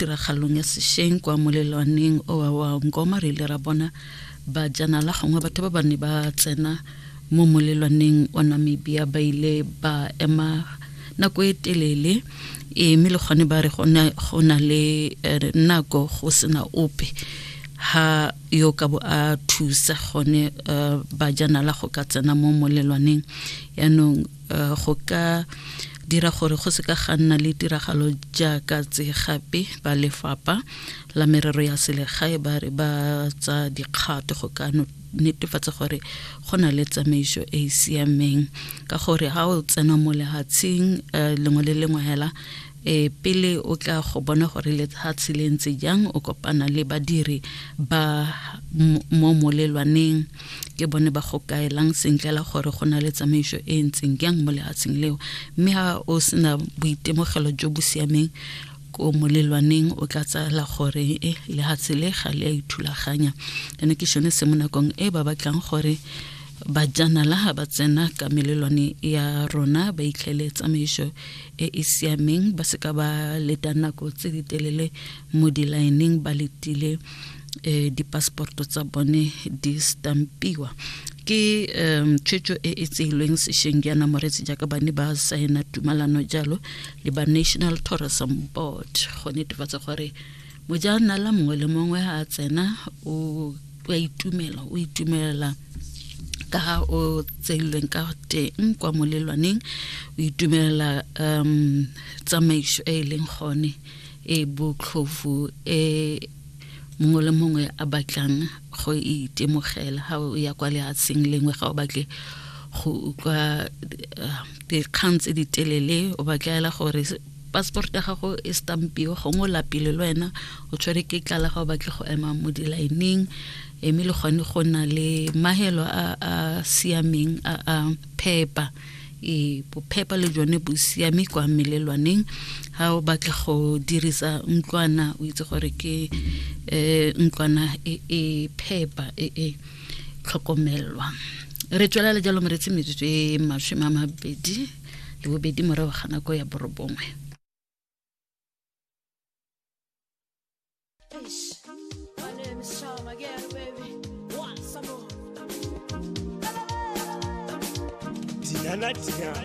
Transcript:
tiragalong ya sešeng kwa molelwaneng o wa wa ngoma re ile ra bona bajanala gongwe batho ba ba ne ba tsena mo molelwaneng wa namibia ba ile ba ema nako e telele e mme le gone ba re go na le eh, nako go sena ope ha yo ka bo a thusa gone eh, bajanala go ka tsena mo molelwaneng yaanong uh, go ka dira gore go se ka ga nna le tiragalo jaaka tse gape ba lefapha la merero ya selegae ba re ba tsa dikgato go ka netefatsa gore go na le tsamaiso e e siameng ka gore ga o tsena mo lehatsheng eh, lengwe le lengwe hela E, pele o tla go bona gore lefatshe le ntse jang o kopana le badiri ba mo molelwaneng ke bone ba go kaelang sentle la gore go na le tsamaiso e ntseng jang mo lefatsheng leo mme ga o sena boitemogelo jo bo siameng ko molelwaneng o tla tsala gore e lefatshe le ga le a ithulaganya ene ke sone se mo nakong e ba batlang gore bajanala ga ba tsena ka melelwane ya rona ba itlhele tsamaiso e e siameng ba seka ba leta nako tse di telele mo dilaeneng ba letile eh, dipassporto tsa bone di stampiwa ke um tshwetso e e tseilweng sešeng jaana moretsi jaaka ba ne ba saena tumalano jalo le ba national tourism board go netefatsa gore mojaanala mongwe le mongwe a tsena o a itumela o itumelela ka ga o tseilweng ka teng kwa molelwaneng o itumelela um tsamaiso e e leng gone e botlhofu e mongwe le mongwe a batlang go itemogela ga o ya kwa lehatsheng lengwe ga o batle go utlwa eh, dikgang tse di telele o batlaela gore passport ya gago e stampiwe gongwe o lapile le wena o tshwere ke tlala ga o batle go ema mo dilaeneng mme le gone go na le mahelo a a siameng a a phepa e bophepa le jone bo siame kwa melelwaneng ga o batle go dirisa ntlwana o itse gore ke um ntlwana e e phepa e e tlhokomelwa re tswelela jalo moretsi metsotso e masome a mabedi le bobedi morago ga nako ya borobongwe Diana Diana